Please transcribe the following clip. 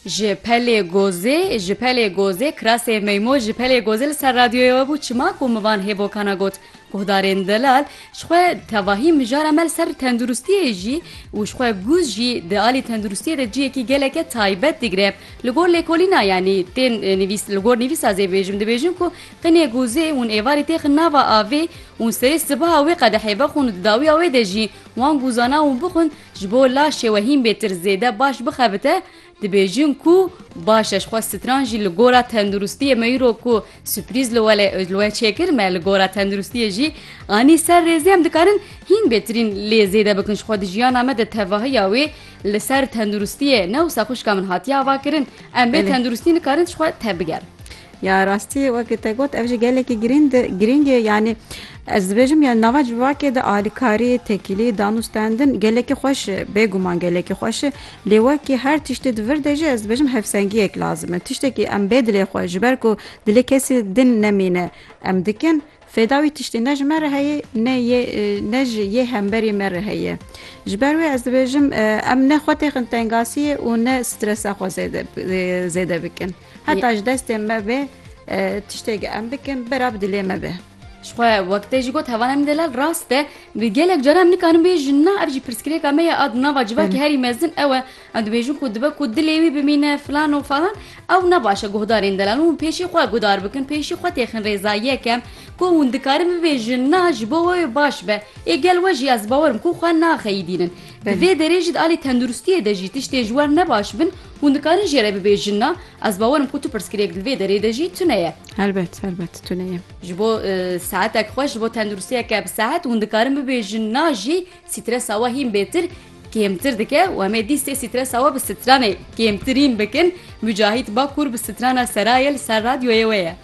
Ji pelê gozê ji pelê gozê kirasê meymo ji pelê gozê li ser radyoyê we bû çima ku mivan hêbokana got guhdarên delal ji xwe tevahî mijara me li ser tenduristiyê jî û ji xwe gûz jî di alî tenduristiyê de ciyekî geleke taybet digire li gor lêkolîna yanî tên nivîs li gor nivîsa zê bêjim dibêjin ku qinê gozê hûn êvarî têxin nava avê û serê sibaha wê qedehê vexûn û di dawiya wê de jî wan guzana û bixwin Ji bo laşê we hîn bêtir zêde baş bixebite, dibêjin ku baş e ji xwe stran jî li gora tenduristiyê me îro ku suprîz li we lê li we çêkir me li gora tenduristiyê jî anî ser rêzê em dikarin hîn bêtirîn lê zêde bikin ji xwe di jiyana me de tevahiya wê li ser tenduristiyê ne wisa xwişka min hatiye avakirin em bê tenduristî nikarin ji xwe tebigerin. Ya rastî wekî te got ev jî gelekî girînd girîng e yanî ez dibêjim ya nava civakê de alîkarî, tekîlî, danûstendin gelekî xweş e bêguman gelekî xweş e lê wekî her tiştî di vir de jî ez dibêjim hevsengiyek lazim e tiştekî em bê dilê xwe ji ber ku dilê kesî din nemîne em dikin fêda wî tiştî ne ji me re heye ne yê ne ji yê hemberî me re heye ji ber wê ez dibêjim em ne xwe têxin tengasiyê û ne stresa xwe zêde zêde bikin. Heta ji destê me bê tiştêk em bikin bera bi dilê me be. Xwe wekte jî got hevanan min delal rast e bi gelek cara em nikarin bê ji na ev jî pirsgirêka me ye ad nava civakî herî mezin ew e em dibêjin ku dibe ku dilê wî bimîne filan û falan ew ne baş e guhdarên delal hûn pêşî xwe guhdar bikin pêşî xwe têxin rêza yek em ku hûn dikarin bibê ji na ji bo wê baş be ê gel we jî ez bawerim ku xwe naxeyîdînin di vê derê jî di alî tenduristiyê de jî tiştê ji wer ne baş bin Hûn dikarin jê re bibêjin na, ez bawerim ku tu pirsgirêk li vê derê de jî tune ye. Helbet, helbet tune ye. Ji bo sihetek xweş, ji bo tenduristiyeke bi sihet hûn dikarin bibêjin na jî sîtresa we hîn bêtir kêmtir dike û em ê dîstê sîtresa we bi sitranê kêmtirîn bikin. Mucahît Bakur bi sitrana Seraye li ser radyoyê wê ye.